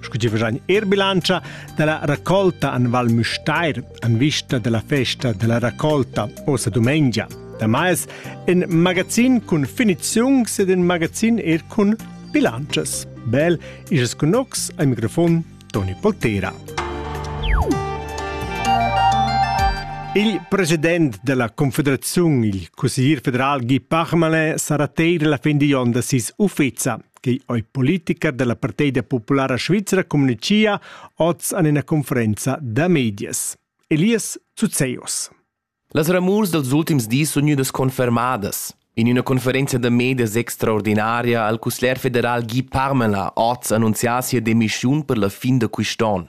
Scu gi fagein er bilantscha dalla raccolta an Val Müstair an vista della festa della raccolta osa dumengia. Damais in magazin cun finiziungs ed in magazin er cun bilanzas. Bel is cunox al microfon Toni Poltera. Il president della Confederazione, il consiglier federal Guy Parmelin, sarà teir la fin di onda sis uffizia. che ei politica dalla parteida populara svizra communicia oz en ina conferenza da medias. Elias Zuzeus. Las ramurs dels ultims dis sun gnüdas confermadas. In üna conferenza da medias extraordinaria al cussler federal Guy Parmelin oz annunzià sia demissiun per la fin da quist'on.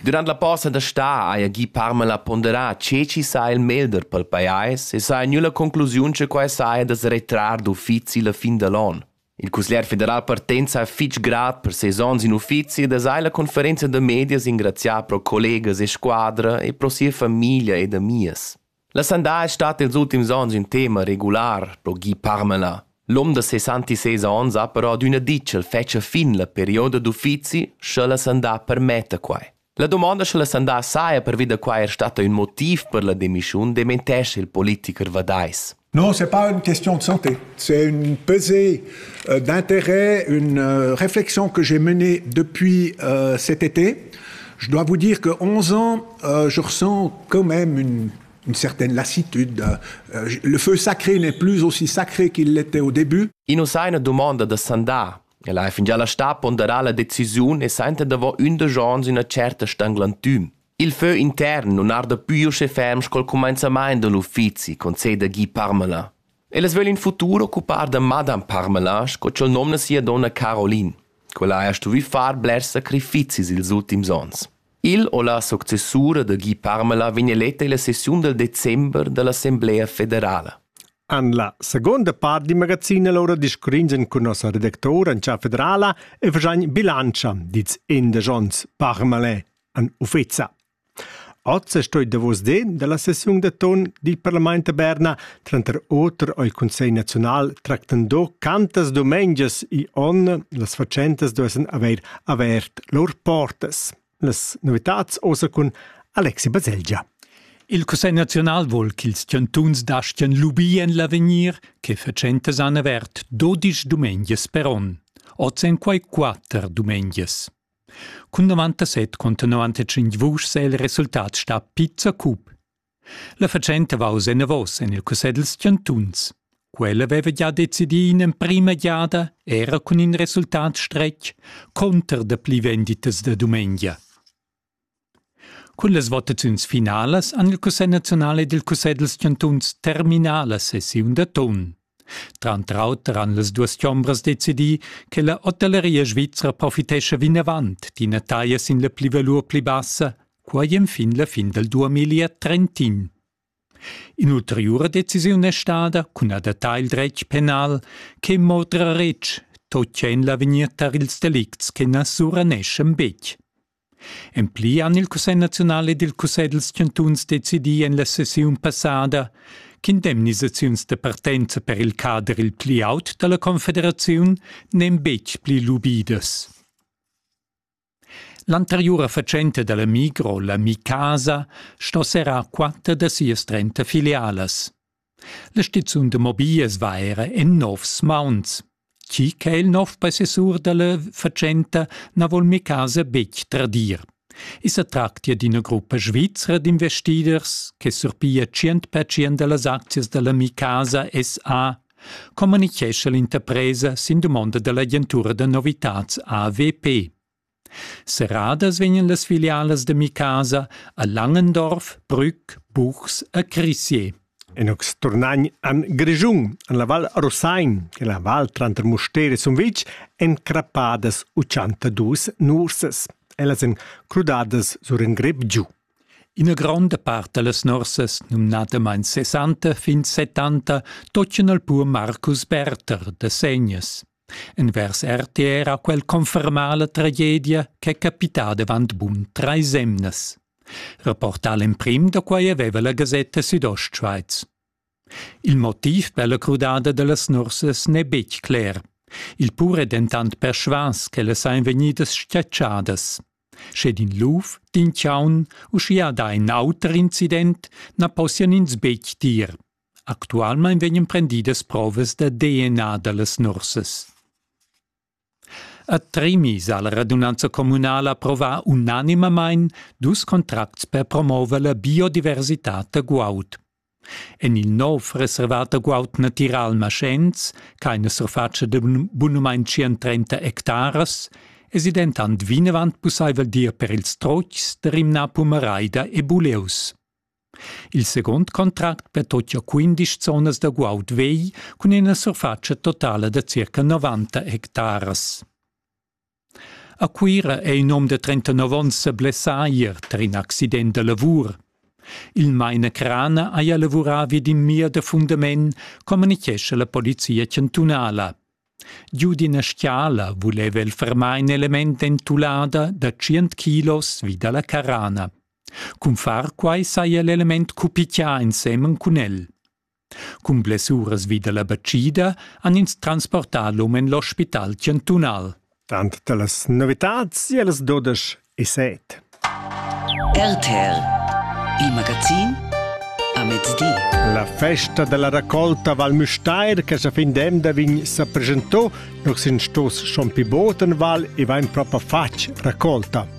Durant la posta da stà haja gì Parmala ponderà tge chi saja il meglder pel pajais e saja gnü la conclusiun che quai saja da's retrar d'uffizi la fin da l'on. Il cusglier federal partenza ha fich grat per ses ons in uffizi ed ha la conferenza da medias ingrazià pro collegas e squadra e pro sia famiglia ed amias. La sandà es stat ils ultims ons ün tema regular pro Guy Parmelin. L'hom da 66 ons ha però adüna dit ch'el fetscha fin la perioda d'uffizi, sche la sandà permetta quai. La domanda sche la sandà saja pervi da quai er stata ün motiv per la demissiun dementescha il politiker vadais. Non, c'est pas une question de santé. C'est une pesée euh, d'intérêt, une euh, réflexion que j'ai menée depuis euh, cet été. Je dois vous dire que 11 ans, Euh, je ressens quand même une, une certaine lassitude. Euh, le feu sacré n'est plus aussi sacré qu'il l'était au début. In us ha ina domanda da sandà. El ha fingià la sta ponderà la decisiun e senta davant undisch ans üna certa stanglantüm. Il feu intern non arda più usce ferm col comenzamaint de l'uffizi, conceda Guy Parmelin. El es völ in futur occupar da Madame Parmelin sco c'el nomna sia donna Caroline. Quella ha stuvü far blers sacrifizis ils ultims ons. Il u la successura da Guy Parmelin vegn eletta illa sessiun dal december da l'Assemblea federala. En la seconda part di magazin allora discurringen cun nossa redactora in cha federala e fagein bilantscha dits indesch ons Parmelin an uffeza. Oz stoi davos de dalla sessiun da ton dil Parlament a Berna Tranter oter ei Cussegl naziunal tractando cantas dumengias igl onn las fatschentas duessen haver avert lur portas. Las novitads osa cun Alexi Baselgia. Il Cussegl naziunal vol ch'ils chantuns dastgien lubir en l'avegnir che fatschentas han avert dodisch dumengias per onn. Oz en quai quatter dumengias. Cun 97 conta 95 vuschs è il resultat sta pizza cup. La fatschenta va oz enavos en il cussegl dals chantuns. Quella aveva gia decidì in'emprima giada, era cun in resultat stretg, cunter dapli venditas da dumengia. Cun las votaziuns finalas han il Cussegl naziunal ed il Cussegl dals chantuns terminà la sessiun da ton. Tranter auter han las duas chombras decidì che la hotelleria svizra profitescha vinavant d'ina taglia sin la plivalur pli bassa, quai enfin la fin dal 2031. In'ulteriura decisiun è stada cun adattar il dretg penal che mo trer retg, totg en l'avegnir tar ils delicts che na suraneschan betg. En pli han il Cussegl naziunal ed il Cussegl dals chantuns decidì en la sessiun passada ch'indemnisaziuns da partenza per il cader il pli aut da la Confederaziun n'èn betg pli lubidas. L'anteriura fatschenta da la Migro, la Mi Casa, sto serrar quatter da sias trenta filialas. La stizun da mobiglias va era en novs mauns. Chi che il nov possessur dalla fatschenta na vol mi casa betg tradir. I sa tractia d'ina gruppa svizra d'investiders che surpia 100% dallas aczias dalla Mi Casa SA communichescha l'interpresa sin dumonda dall'agentura da novitads AWP. Serradas vegnan las filialas da Micasa a Langendorf, Brügg, Buchs e Crissier. Inux turnagn an Grischun, an la Val Rosain, che la val tranter Mustér e Sumvitg en crappadas uchantadus nursas. Ellas en crudadas sur in grep giu. Ina gronda part da las nursas, numnadamain 60 fin 70, toccan al pur Marcus Berther da Segnas. Envers RTR ha quel confermà la tragedia ch'è capità davant bun trais emnas. Reportà l'emprim da quai aveva la gasetta Südostschweiz. Il motiv per la crudada da las nursas n'è betg cler. Il pur è dentant persvas ch'ellas sajan vegnidas schatschadas. Sche din luf, din chaun, uschia da in auter incident, na possian ins betg dir. Actualmein vegnan prendidas provas da DNA dallas nursas. A Tremis ha la radunanza communala approvà unanimamein dus contracts per promover la biodiversitad da guaud. En il nov reservat da guaud natiral Maschens, ch'aina surfatscha da bunumain 130 hectaras, es i dentant vinavant pussaivel dir per ils trocs da rimnar pumaraida e buleus. Il second contract pertocchia quindisch zonas da guaud vegl cun ina surfatscha totala da circa 90 hectaras. A Cuira è in um de 39 onns sa blessà ier tar in accident da lavur. Il Meine Crana haja lavurà vi d'in mir da fundament, communichescha la polizia chantunala. Giu d'ina schiala vuleva el fermar in element entulada da 100 kilos vi dalla carana. Cun far quai saja l'element cupichià ensemen cun el. Cun blessuras vi da la batschida han ins transportà l'um en l'ospital chantunal. Tant da las novitads e las dudesch e set. RTL, il magazin a mezdi. La festa della raccolta Val Müstair che sa fin d'emda vegn sa presentò, nus in stos schon pi botenval e vain propa fatg raccolta.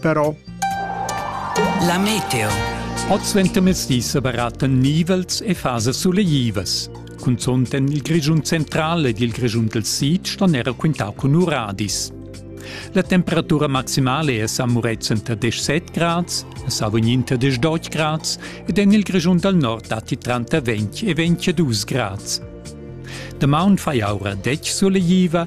però. La meteo. Oz ventermezdi sebaraten nivels e fasas suleivas. Cunzont en il Grischun central ed il Grischun del Sid ston era quintau cun uradis. La temperatura maximale è a Muretzen tra 17 grads, a Savognin tra 18 grads ed en il Grischun dal Nord datti tranter 20 e 22 grads. Damaun fai aura dec suleiva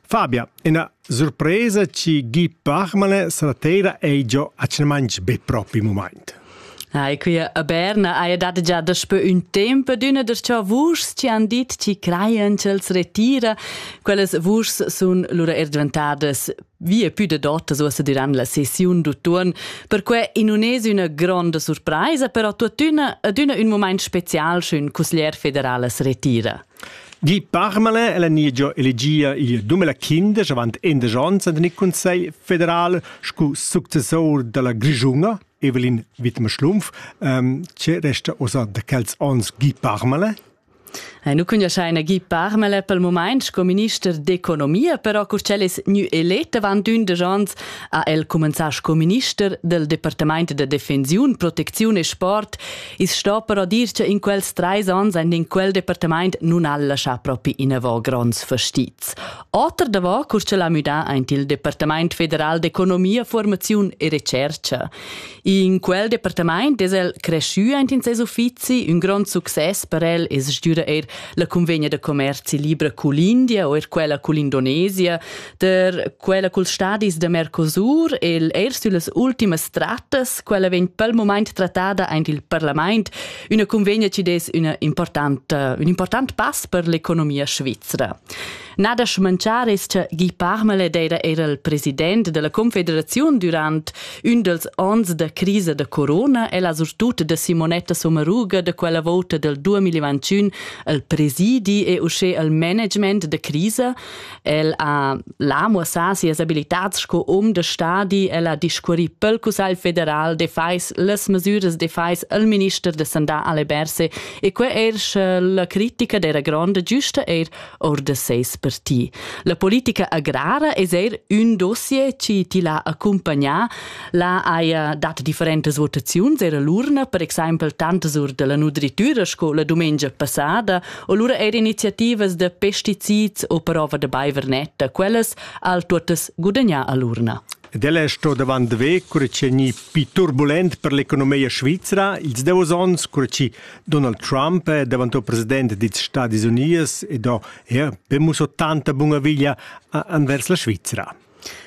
Fabia, ina surpresa ci gi parmane stasera ei giò a Cemanch be propi moment. Ai, qui a Berna haja dat già daspö ün temp adüna da ciò vuschs ci han dit ci crajan ch'els retira. Quellas vuschs sun lura er dvantadas via più de dotas uossa diran la sessiun d'utuon. Perque in un es üna gronda surpraisa, però tuottüna adüna ün moment special sch'ün cusglier federal as retira. Gi Parmale ella niegia elegia il dumela quindesch avant indesch onns en il Consiglio federal sco successor dalla Grischunga Evelyn Wittmer-Schlumpf. Ähm, che resta ossa da quels onns Gi Parmale? Eh, nu cugnuaschaina Guy Parmele pel moment sco minister d'economia, però cur ch'el es gnü elet avant ündesch ans ha el cumenzà sco minister del Departament da defensiun, protecziun e sport I's sto però dir cha in quels trais ans aint in quel departamaint nun ha'l laschà propi inavò gronds fastizs. Oter davò cur ch'el ha müdà aint il Departamaint federal d'economia, formaziun e recercha. In quel departamaint es el creschü aint in ses uffizi, ün grond success per el es sgüra eir la cunvegna da commerzi libra cul India o eir quella cul Indonesia, per quella culs stadis da Mercosur el eir süllas ultimas trattas, quella vegn pel moment trattada aint il parlament, üna convegna ci des üna importanta, un important pass per l'economia svizzera. Nada schmanchar es cha Guy Parmale d'eira era il president della Confederazione durant ün dels ons da crisa da corona e la surtut da Simonetta Sommaruga da quella vota del 2021 al presidi e usce al management da crisa, El ha la muossà sias abilitats sco um de stadi, el ha discurri pel Cussagl federal de fais las mesüras de fais al minister de sandà alle Berse e que er sche la critica dera gronda giusta er or de seis parti. La politica agrara es er un dossier chi ti l'ha accompagnà, la haja dat differentes votaziuns era l'urna, per exaimpel tantas ur della nudritura sco la dumengia passada, O lura eir iniziativas da pesticids o prova da baiver netta, quellas al tuottas gudagnà a l'urna. Ed ella è sto davant ve, cura che ni più turbulent per l'economia svizra, ils davos onns, cura che Donald Trump è davanto president degli Stati Uniti e do er per muso tanta bunaviglia anvers la Svizzera.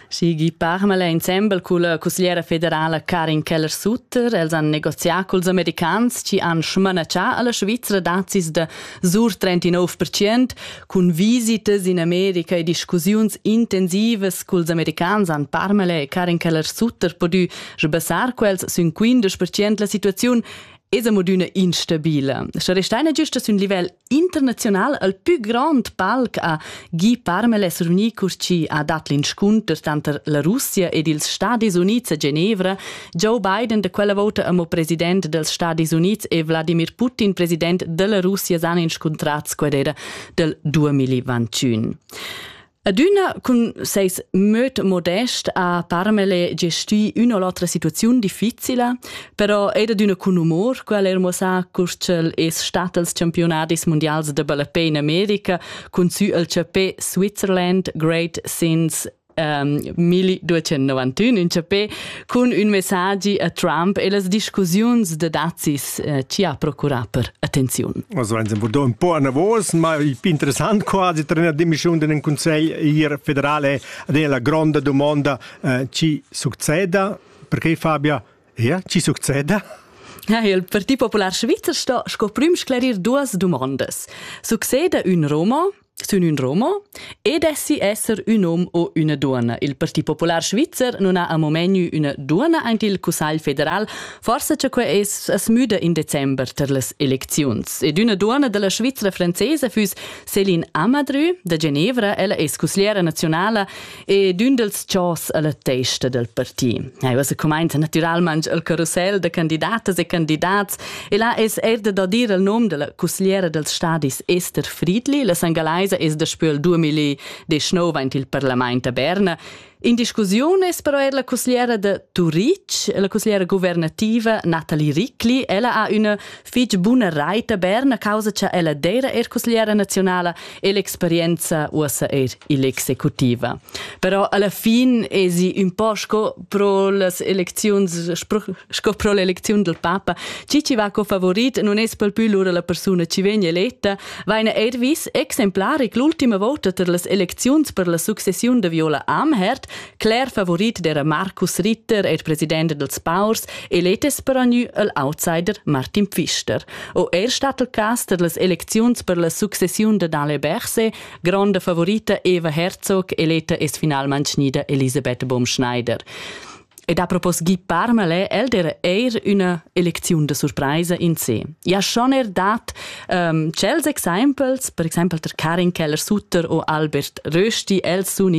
Sigi parmela insembel culla cusgliera federala Karin Keller-Sutter. Els han negozià culs americans chi han schmanatschà alla Svizra dazis da sur 39% cun visitas in America e discussiuns intensivas culs americans han parmela e Karin Keller-Sutter podü sbassar quels sün 15% la situaziun es amo d'üna instabila. Sche restaina giusta sün livel International al pü grand palc a Guy Parmeles Runi Curci ha dat l'inscunter tanter la Russia ed ils Stadis Unids a Genevra. Joe Biden da quella vota amo president dels Stadis Unids e Wladimir Putin president della Russia san inscuntrats quedera del 2021. Adüna cun seis möd modest ha Parmele gestì üna o l'otra situaziun difficila, però ed adüna cun umor, quel ha er muossà cur ch'el es stat als campiunadis mundials da ballapè in America cun sü al chapè Switzerland Great Since um, ehm, 1291, un chapè Cun ün messagi a Trump e las discussiuns de dazis eh, ci ha procurà per attenziun. Also eins un po anavos, ma interessant quasi tra una dimissione di un consiglio federale ad la grande domanda eh, ci succeda, perché Fabia? Ja, ci succeda? Ja, il Partito Popular Svizzer sto sco prim sclerir duas domandas. Succeda ün Roma Sün ün romo e dessi esser ün hom o üna duonna. Il Parti Popular Svizzer non ha amo menu üna duonna aint il Cussagl federal, forsa cha que es as müda in december tar las elecziuns. Ed üna duonna da la Svizra francesa füss Céline Amadru da Genevra. Ella es cusgliera nazionala E d'ün dels chors a la testa del parti. Aiva se cumainza natüralmaing il carossel da candidatas e candidats e là es erda da dir il nom della cussgliera dels stadis Esther Friedli. La sangalaisa es daspö il 2019 aint il parlament a Berna In discussiun es però er la cussgliera da Turic, la cussgliera guvernativa Nathalie Ricli. Ella ha üna fich buna raita bern a causa cha ella d'eira eir cusgliera naziunala e l'experienza uossa eir ill'executiva. Però alla fin esi ün po sco pro las elecziuns sco pro l'elecziun del papa, chi ci va co favorit non es pel pü lura la persuna chi vegn eletta, vaina eir vis exemplaric l'ultima vota ter las elecziuns per la successiun de Viola Amherd, Cler favorit d'era Marcus Ritter er president dels Paurs e let es peranü el outsider Martin Pfister. O er stat il cas per las elecziuns per la successiun de Dale Berse, gronda favorita Eva Herzog eleta es finalment schnida Elisabeth Baumschneider. Ed a propos Guy Parmale, el der eir üna elecziun de surpraisa in se. Ja schon er dat um, cels exempels, per exempel der Karin Keller-Sutter o Albert Rösti, els sun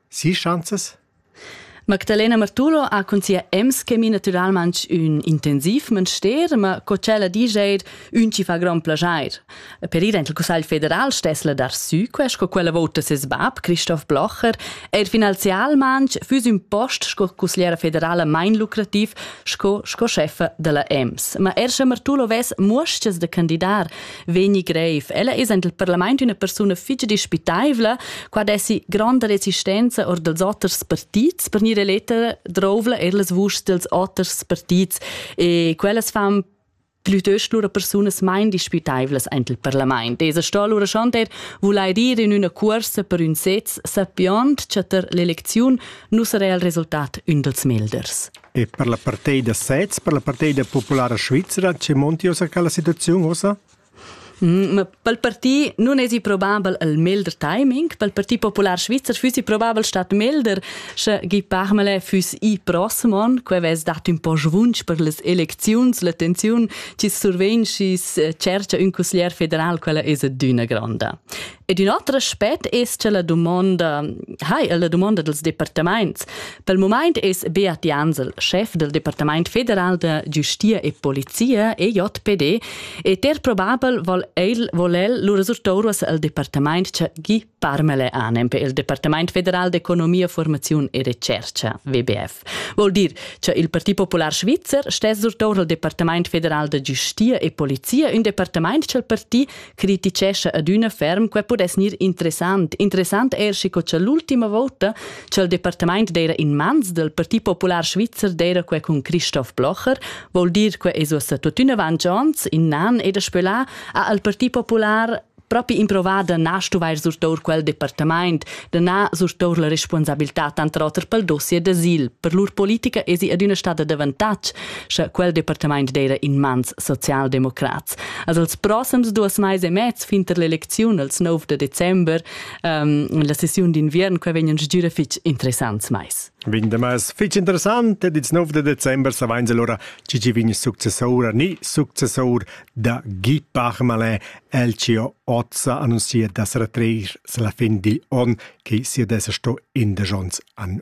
Sis schanzas? Magdalena Martulo ha cun sia Ems-chemie naturalmain ün intensiv manster, ma co ch'ella disch eir, ün chi fa grand plaschair. Per ir aint il Cussagl federal stess la dar sü que, sco quella vouta ses bab, Christoph Blocher, eir finanzialmain füss ün post sco cussgliera federala main lucrativ sco, sco chefa da la Ems. Ma er sche Martulo vess muoschas da candidar, vegni grev. Ella essend il parlament üna persuna fitg dispitaivla, qua dessi gronda resistenza or dels oters partits per gnir eletta drovla er las vuschs dels oters partits e quellas fan plütöst lura persunas main dispitaivlas aint il parlament. Es sto lura schon der vulair ir in üna cuorsa per ün sez, sappiond cha tar l'elecziun nu sarà il resultat ün dels melders. E per la partei da sez, per la partei da populara svizra, che monti ossa quella situaziun ossa? Mm, ma pel parti non esi probabel il melder timing, pel parti popular svizzer füssi probabel stat melder, sche Guy Parmele füss i prossmon, que ves dat un po svunsch per les elecziuns, l'attenziun chi survegn schi eh, cerca un cusglier federal, quella es d'üna gronda. Ed ün oter aspet es cha la dumonda hai è la dumonda dels departamaints. Pel mumaint es Beat Jansel, schef del Departamaint federal da giustia e polizia EJPD, e ter probabel vol el, vol el lur resultouras al departamaint cha gi parmele anem pel Departamaint federal d'economia, formaziun e recercha WBF. Vol dir cha il Parti Popular Svizzer stess surtour al Departamaint federal da giustia e polizia, ün departamaint cha'l parti criticescha adüna ferm quai pudess gnir interessant. Interessant er schi co cha l'ultima vota cha il departamaint d'eira in mans del Parti Popular Svizzer d'eira quai cun Christoph Blocher, vol dir que es uossa tuottüna avanti ons, in nan e daspö là ha il Parti Popular propi improvà da na stuvair surtour quel departamaint, da na surtour la responsabilità tanter oter pel dossier d'asil. Per lur politica esi adüna stada d'avantatg, scha quel departamaint d'eira in mans socialdemocrats. Also els proxims duas mais e mez fin tar l'elecziun als 9 de december ähm, la sessiun d'inviern qua vegnan stgira fitg interessants mais. Vin de mais fitg interessant ed ils 9 de december savains allora ci ci vegn successor ni successor da Guy Parmalin Elcio Ozza annunziert dass er treir la fin di on che sia dessa sto in de jons an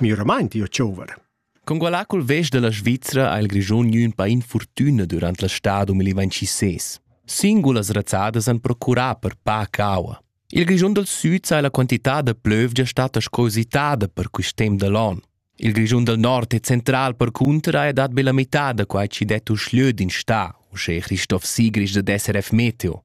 miramaint io chauver. Con quella col vest della Svizzera ha il Grischun gnü ün pa infortüna durant la stà 2026. Singulas razzadas han procurà per pa caua. Il Grischun del Süd sa la quantità da plövgia stata scositada per quist temp da l'on. Il Grischun del Nord è central per cunter ha dat be la metà da quai ci det uschlö din sta, uschè Christoph Sigrich da SRF Meteo.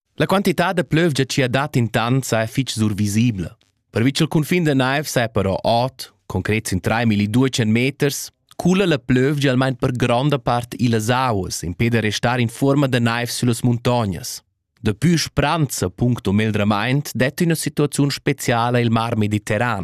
La quantità da plövgia chi ha dat intant saja fich survisibla. Pervi cha'l cunfin da naiv saja però ot, concret sin 3200 meters, cula la plövgia almain per gronda part illas auas impè da restar in fuorma da naiv süllas muntognas. Dapü spranza puncto megldramaint det üna situaziun speciala il Mar Mediterran.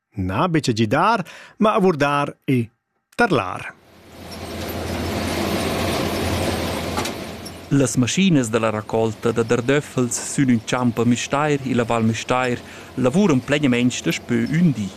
Na betg gidar, ma avurdar e tarlar. Las maschinas da la raccolta da dardöffels sün ün champ a Müstair illa Val Müstair lavuran plegnamaing daspö ün di.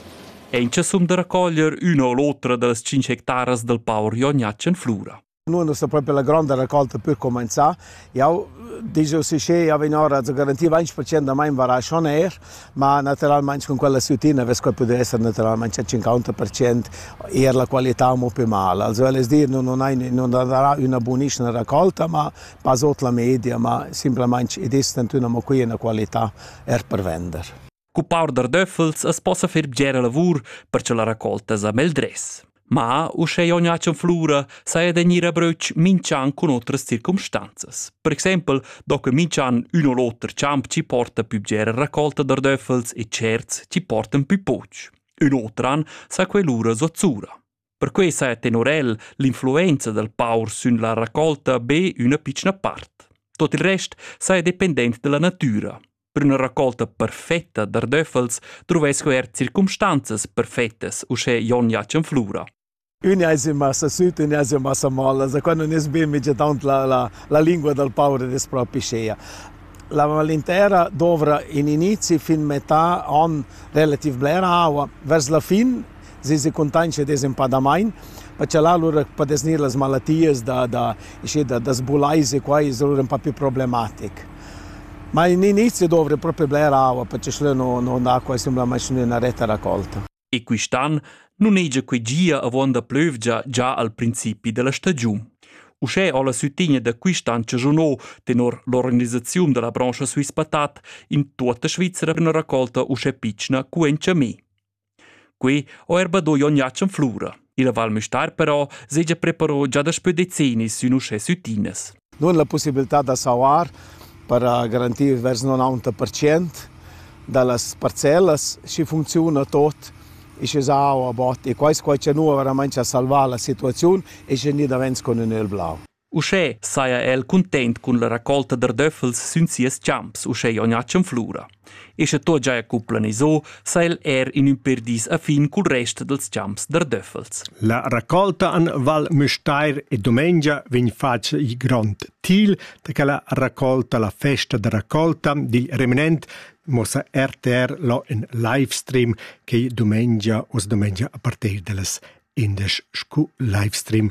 Aint cha sum da raccoglier üna o l'otra da las tschinch hectaras dal paur Jon Jatsch in Flura. Nun es propi la gronda racolta per cumanzà. Jau digiu si che jau vegn ora a garantir 20% da mai varasc on aer, ma natüralmaing cun quella sütina vess quai pudü esser natüralmaing a 50% eir la qualità amo pi mal. Also völ es dir, nun hai nun darà üna bunischna racolta, ma pas ot la media, ma simplamaing i distant ün amo qui üna qualità eir per vender. Cu paur da döffels as possa fer bgera lavur per cha la raccolta sa meldress. Ma, uschè jon Jacen Flura saja da gnir a bröch minch'an cun otras circumstanzas. Per exaimpel do que minch'an ün o l'oter champ chi porta pü bgera raccolta da döffels e tscherts chi portan pü poch. Ün oter an sa que lura zuozzura. Perquei sa è tenor el l'influenza dal paur sün la raccolta be üna pitschna part. Tot il rest sa è dependent dalla natüra. Per üna raccolta perfetta d'ardöffels druvess er circumstanzas perfettas uschè Jon Jacen Flura. Ün ais in massa süt, ün ais in massa molla, da quando ne sbimige tant la, la, la lingua del paure des propisceia. La malintera dovra in inizi fin metà an relativ blera aua. Vers la fin si se contancia des empadamain, perché là lur padesnir las malatias da da isce da da sbulaise qua es lur ün po più problematic. Ma in inizio dovre propi bler aua perché schlö no no andà qua simplamaing üna retta raccolta. E quist'an nun hegia quei gia avon da plövgia già al principi della stagiun. Uschè ho la sütigna da quist'an chagiunò tenor l'organisaziun della brancha Swiss Patat in tuotta Svizzera üna raccolta uschè pitschna cu en Chamé. Quei ho er badui ognatsch en flura. Il Val Müstair però segia preparò già daspö decennis sün uschè süttinas. Nun la possibilità da sauar per garantir vers 90% da las parcellas schi funcziuna tot e sche sa aua bot e quai quai cha nu veramente ha salvà la situaziun e sche ni davents con ün el blau. Uschè saja el cuntent cun la racolta d'ardöffels sün sias champs, uschè Jognatschen Flura. E sche tot giaja cu planiso, sa el er in ün per dis a fin cul rest dels champs d'ardöffels. La raccolta an Val Müstair e domengia vegn fatg il grond til da che la raccolta, la festa da raccolta dil remanent mossa RTR lo in livestream che domengia os domengia a partir dellas indesch scu livestream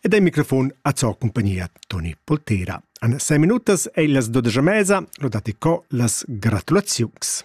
Ed il microfon a zo compagnia Toni Poltera. An 6 minutas è las 12 mesa, lo dati co las gratulaziuns.